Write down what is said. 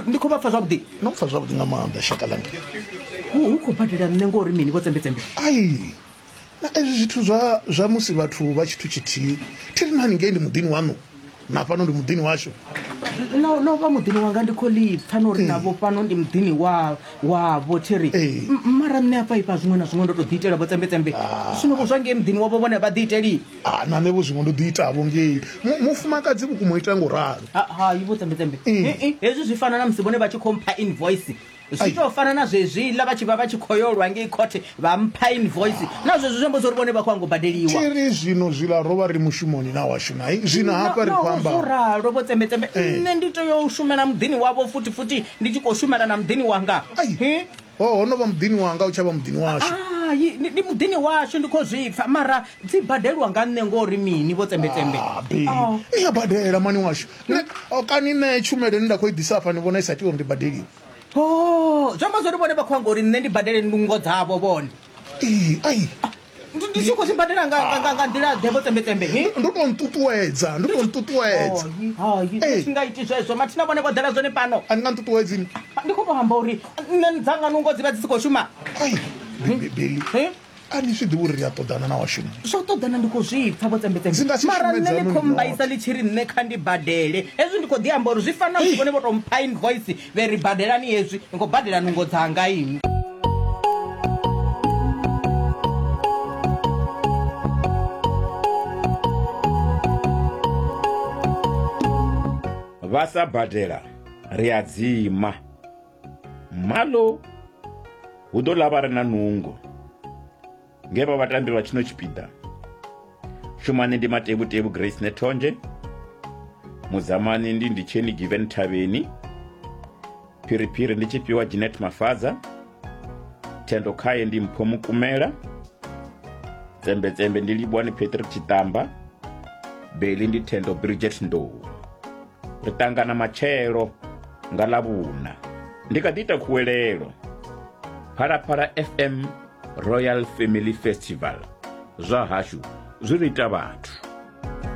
ndi khou vha pfa zwavhuḓi no pfa zwavhuḓi nga maanḓa shaka langa hu khou badela nṋe ngori mini vho tsembetsembe ai na ezwi zwithu zwa zwa musi vhathu vha tshithu tshithihi thi ri nani ngei ndi muḓini waṋu na fhano ndi muḓini washu no vha muḓini wanga ndi khou lipfa no uri navho fhano ndi muḓini wa wavho thi ri mara nṋe afha ifha zwiṅwe na zwiṅwe ndo to ḓi itela vho tsembetsembe zwino vho zwa ngei muḓini wavho vhone vha ḓi iteli Ah, na nṋe vho zwiṅwe ndo ḓi itavho ngei Mu- mufumakadzi vhukuma o ita ngo ralo Ha- hai vho tsembetembe Eh. Eh, eh, hezwi zwi fana na musi vhone vha tshi khou mpha invoice Ai. zwi tou fana na zwezwiḽa vha tshi vha vha tshi khou yo lwa ngei khothe vha mpha invoice na zwezwi zwi amba zwa uri vhone vha khou ango badeliwa tiri zwino zwiḽa ro vha ri mushumoni na washu nai zwino hafha ri khou amba ralo vho tsembetembe Eh. nṋe ndi tea u shumela muḓini wavho futhi futhi ndi tshi khou shumela na muḓini wanga Ai. Eh, Oh, ho no vha muḓini wanga u tsha vha muḓini washu. Hai, ndi ndi muḓini washu ndi khou zwi pfa mara dzi badeliwa nga nṋe ngori mini vho tsembetsembe. Ah, be. Oh. Ni a badela mani washu. Ne, oh, kani nṋe tshumelo ine nda khou i ḓisa afha ni vhona i sa tea uri ndi badeliwe. Oh, zwi amba zwori vhone vha khou anga uri nṋe ndi badele ndungo dzavho vhone. ee ai ndi tshi khou zwi badela nga nga- nga- nga nḓila ḓe vho tsembetembe he ndo to nṱuṱuwedza ndo to nṱuṱuwedza Ee. singa iti zwezwo mathina vhone vho ḓela zwone pano a ni nga nṱuṱuwedzini ndi khou to amba uri nṋe dzanga nungo dzi vha dzi si khou shuma ai bebeli he a ni zwi ḓivhi uri ri a ṱoḓana na washumi zwo ṱoḓana ndi khou zwi pfa vho Dzi nga si tsembetembe mara shumedze nṋe ni hanoni khou mbaisa nothi. ḽi tshi ri nṋe kha ndi badele hezwi ndi khou ḓi amba uri zwi fanela musi vhone vho to mpha invoice Vhe ri badelani hezwi, ni khou badela nungo dzanga inwi. Vha sa badela ri a dzima. Malo hu ḓo ḽa vha re na nungo. nge vha vhatambi vha tshino tshipiḓa shumane ndi matevhutevhu grace nethonzhe muzamani ndi nditsheni given thavheni phiriphiri ndi tshifhiwa ginet mafadza thendo khaye ndi mpho mukumela tsembetsembe ndi livhuwani patrick tshitamba beli ndi thendo bridget ndou Ri ṱangana matshelo nga Ḽavhuṋa. Ndi kha ḓi ita khuwelelo. Phalaphala FM Royal Family Festival zwa hashu zwi ri ita vhathu.